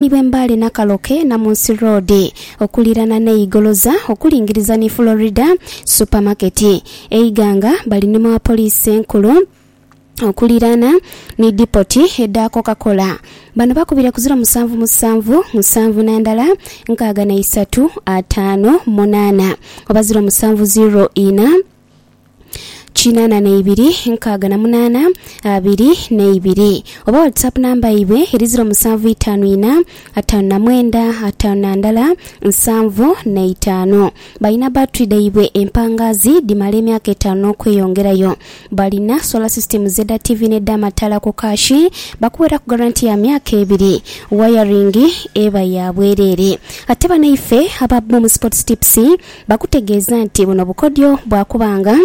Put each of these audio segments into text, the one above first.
ni bwe Mbale Nakaloke, Namunsi Road, okuliirana n'e Igoloza okulingiriza ni Florida Supermarket. E Iganga bali ni mu Apoliisi Enkulu okuliirana ni dipoti edha Coca-Cola. Bano bakubire ku ziro musanvu musanvu musanvu na ndala nkaaga na isatu ataano munaana oba ziro musanvu ziro ina. kinana neibiri nkaaga na munana abiri neibiri oba whatsapp number yaibwe eri ziro musanvu itaanu ina ataanu na mwenda ataanu na ndala nsanvu neitaanu balina battery dhaibwe empangazi dhimala emyaka etaanu nokweyongerayo balina solar systems edha TV ne dha mataala ku cash bakuweraku guarantee ya myaka ebiri wiring eba ya bwerere ate bano ife aba Boom sports tips Bakutegeeza nti buno bukodyo bwa kuba nga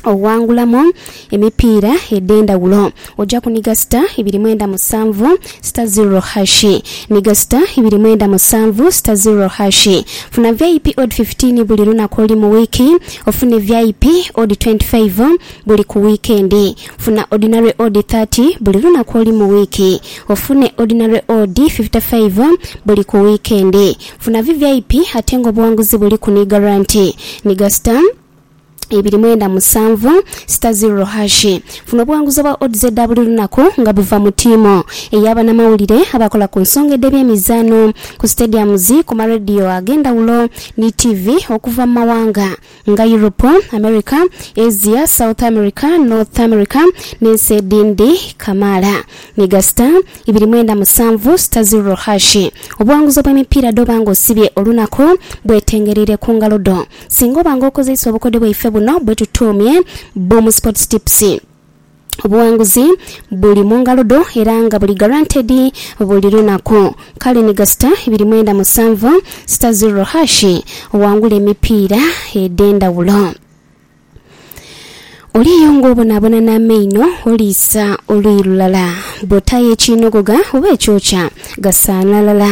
owangulamu emipiira edh'endhaghulo oja kuniga sita ibiri mwenda musanvu sita zirro hashi. Niga sita ibiri mwenda musanvu sita zirro hashi. Funa vip odd fifteen buli lunaku olu mu wiiki ofune vip odd twenty five buli ku wiikendi. Funa ordinary odd thirty buli lunaku olu mu wiiki ofune ordinary odd fifty five buli ku wiikendi. Funa VVIP ate nga obuwanguzi buli ku ni garanti ni ga star ibiri mwenda musanvu star zirro hash. Funa obuwanguzi obwa odds edha buli lunaku nga buva mu tiimu eya banamawulire abakola ku nsonga edh'ebyemizaano, ku stadiums, ku ma radio ag'endhawulo ni tiivi okuva mu mawanga. nga Yuropu, Amerika, Asia, South Amerika, North Amerika, n'ensi edhindi kamaala. Ni gasita ibiri mwenda musanvu sita zirro hashi. Obuwanguzi obw'emipiira dh'oba nga osibye olunaku bwetengereire ku ngalo dho. Singa oba nga okozeisa obukodyo bwaife buno bwetutuumye Boom Sports Tips, Obughanguzi buli mu ngalo dho era nga buli guaranteed buli lunaku. Kale ni gasita ibiri mwenda musanvu sita zero hash owangule emipiira edh'endhawulo. Oliyo ng'obonaabona n'amaino oliisa oluyi lulala. Bw'otaayo ekiinogogha oba ekyokya, gasaana ghalala.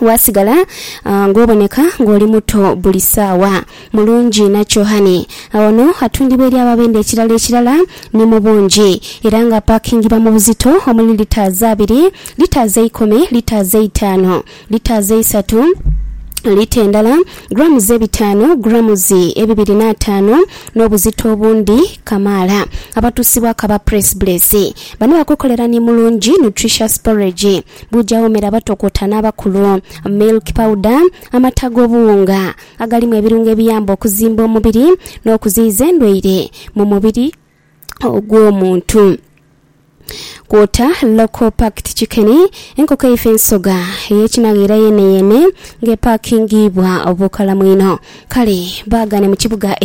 waasigala ng'oboneka ng'oli muto buli saawa. Mulungi nakyo hhani agho no atundibwa eri ababenda ekirala ekirala ni mu bungi, era nga apaakingibwa mu buzito omuli litres abiri, litres eikumi, litres eitaanu, litres eisatu, lita endala, grams ebitaanu, grams ebibiri n'ataanu, n'obuzito obundi kamaala. Abatuusibwaku aba Press Bless bano bakukolera ni Mulungi Nutritious Porridge. Buja womera abatokota n'abakulu. Milk powder, amata ag'obuwunga agalimu ebirungo ebiyamba okuzimba omubiri n'okuziyiza endwaire mu mubiri ogw'omuntu. Kwota local packed chicken, enkoko eife ensoga ey'ekinaghiira yeeneyeene ng'epakingiibwa obukalamu inho. Kale baagane mu kibuga e.